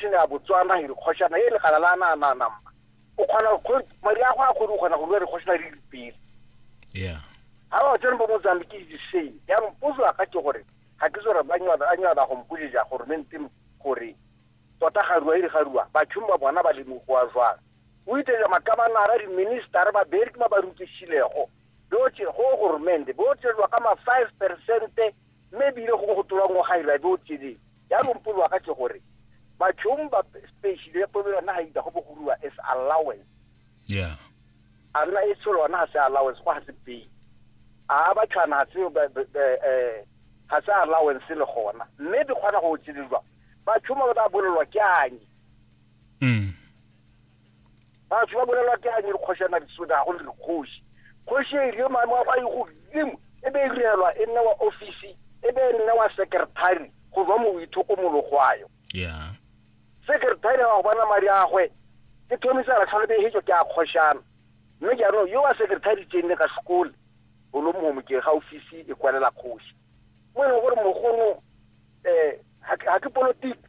Ke ne a Botswana he re kgoshana he le gala la na na na mma. O kgona go mari a go a kgone go kgona go lwa re kgoshana re le pele. Yeah. Ha ba tsena ba mo zambi ke di same. Ya mpozo aka ke gore ga ke tsore ba nywa ba nywa ba go mpojeja gore me ntse gore tota ga ruwa ga ruwa ba tshumba bona ba le mo go a jwa. O itse ma ka ba na ra di minister ba beri ke ma ba rutse silego. Bo tse go go rmende bo tse lwa ka ma 5% me bile go go tlola ngo ga ira bo tse di. ya lompolwa ka ke gore bathong ba special ya polo yona ga ita go bogolwa as allowance yeah a nna e tsholo yona ga se allowance go ga se pay a ba tshwana ga se eh ga se allowance le gona mme di kgona go tsilelwa ba tshuma ba bolelwa ke anye mm batho ba bolelwa ke a dikgoshana disoda go le dikgoshi kgoshi e rile maemo a e godimo e be e direlwa e nne wa ofisi e be e nne wa secretary go ba mo ithokomologwayo yeah secretary wa go bona madi a gwe ke thomisa ra tlhole behetso ke a kgoshana mme jaanong yo wa secretary tsene ka sekole o lo mogomo ke ga ofisi e kwalela kgoshi mo e leng gore mogongwe um ga ke politiki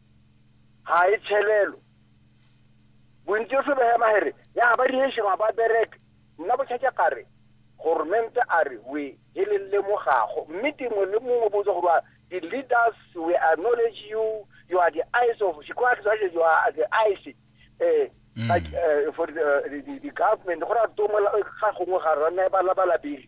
ga e tshelelo bontsi o se behema here ya ba rehešeng ga ba bereke nna botšhatša kare gormente a re we e le lemogago mme dingwe le mongwe botsa gore the leaders we acknowledge you you are the eyes of she quite says you are the eyes eh mm. like uh, for the, uh, the, the government go ra tomola ga gongwe ga rana ba la ba la bile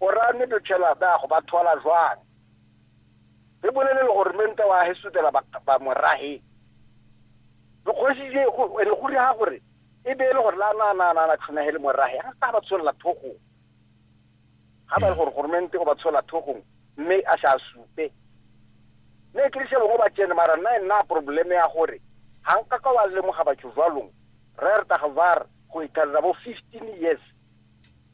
Ora ne Dochela ba go ba thola jwang? Re bolele le gore menta wa he sutela ba, ba mo rahe. Re kgosi je go ene go riha gore e be le gore la na na na na tshona he le mo rahe. Ha ka ba tsholla thogo. Ha ba le gore gore mente o ba tsholla thogo mme a sa supe. Ne ke se bongwe ba tsene mara nna nna probleme ya gore ha nka ka wa lemoga batho jwalong. Re re taga var go ithalela bo 15 years.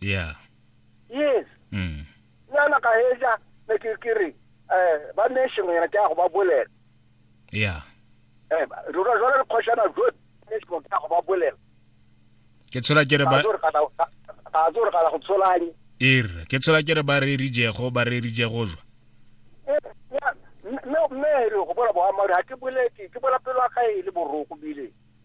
yeah yes mm yana ka heja ne ke ke re eh ba nation yana ke a go ba bolela yeah eh ro ro re khoshana go nation ke a go ba bolela ke tshola ke re ba ka zo re ka go tsholanye ir ke tshola ke re ba re rije go ba re rije go jwa no me re go bola boammaaruri ga ke boletse ke bola pelo ya gae le boroko bile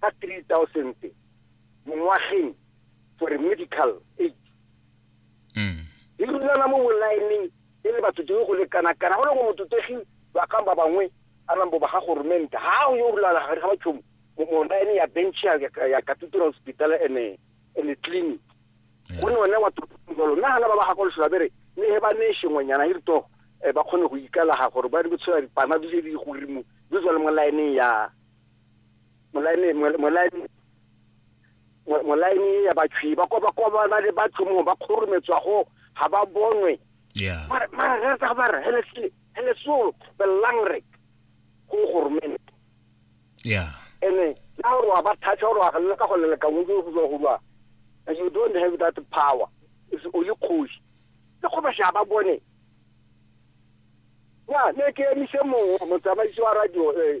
ka 3000 mo ngwageng for medical aid mm. di rulana mo bolaeneng e le batho dingwe go lekana kana go le go mototegi ba kang ba bangwe a nang bo ba ga goromenta ga o yo rulana ga ba tšhomo mo laene ya bench ya ya cathedral hospital ene ene clinic go ne one wa totolo nna hana ba ba ga go leswa bere ne he ba ne shengwenyana e rito eh, ba kgone go ikalaga gore ba di botshela dipana di di go rimo di tswa le mo laeneng ya molaene mol- molaene mo- molaene ya batshwi ba kwa ba kwa ba na le batho mo ba kgorometswa go ga ba bonwe ya mara mara re tsa ba re hele se hele so belang re go goromene ya ene na gore wa ba thatha gore wa galela ka go leleka mo go tswa go lwa and you don't have that power it's only kgosi le go ba sha ba bone ya ne ke emise mongwe motsamaisi wa radio eh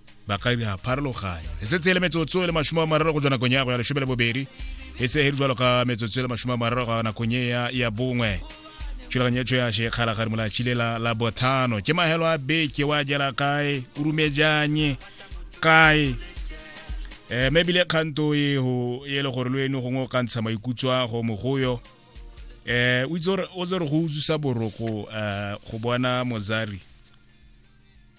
ba ka dira pharologanya e setse e le metsotso e le masome a mararo go tswa nakong ya go ya lesome le bobedi e se e jalo ka metsotso e le masome a mararo go nakong e ya ya bongwe thulaganyetso ya shekgala ga rimolatlhile la la bothano ke mahelo a beke wa jela kae o rumejanye kae um mme ebile kganto eo e le gore lo eno gongwe o ka ntsha maikutso a go mogoyo eh o itse gore o tse re go utlwisa boroko eh go bona mozari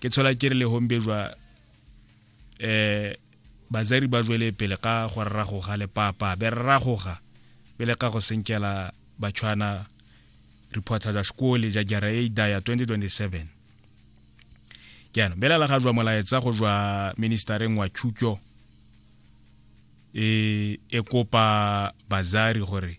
ke tshola ke re le hombe jwa eh bazari ba jwele pele ka go rragoga le papa be rragoga pele ka go senkela batshwana reporter ja sekole ja jara e daya 2027 jaanong belela ga jwa molaetsa go jwa ministereng wa thuto e e kopa bazari gore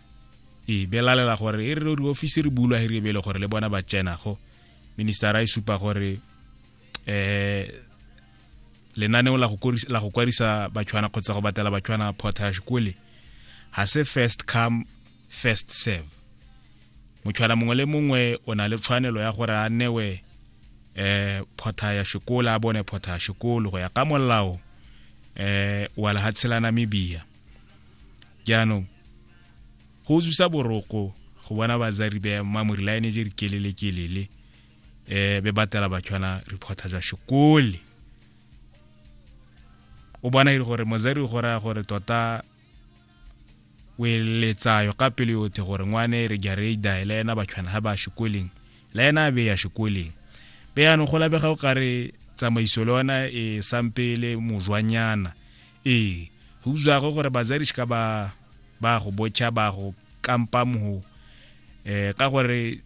e belalela gore e re diofisi re bulwa he re bele gore le bona ba tsena go minister a e supa gore eh lenaneo la go kwadisa batshwana kgotsa go batela batshwana portage kole ga se first come first serve motshwana mongwe le mongwe o na le tshwanelo ya gore a newe eh photha ya sekolo a bone photha ya sekolo go ya ka molao eh wa lehatshe la namibia jaanong go utlwisa boroko go bona bazari be mamori la ene je re kelele kelele eh be batela batshwana reporter ja sekole o bona ile gore mozari go raya gore tota o eletsayo ka pele yotlhe gore ngwane re jareida le ena batshwana ga ba sekoleng le ena a be ya sekoleng be yanong go labega o kare tsamaiso le ona e sampele mojwanyana ee go utswago gore bazadi ka ba ba go botšha ba go kampa mogo eh ka gore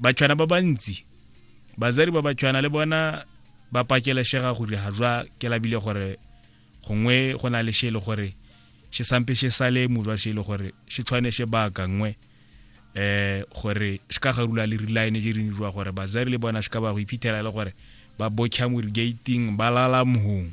batshwana ba bantsi bazadi ba batshwana le bona ba pakeleshega go dira jwa ke labile gore gongwe go na le she le gore she sampe she sale mojwa she le gore she tshwane she ba ka nngwe eh gore se ka garula le reline je ring jwa gore bazari le bona se ka ba go iphithela le gore ba botšha mo gating ba lala mohong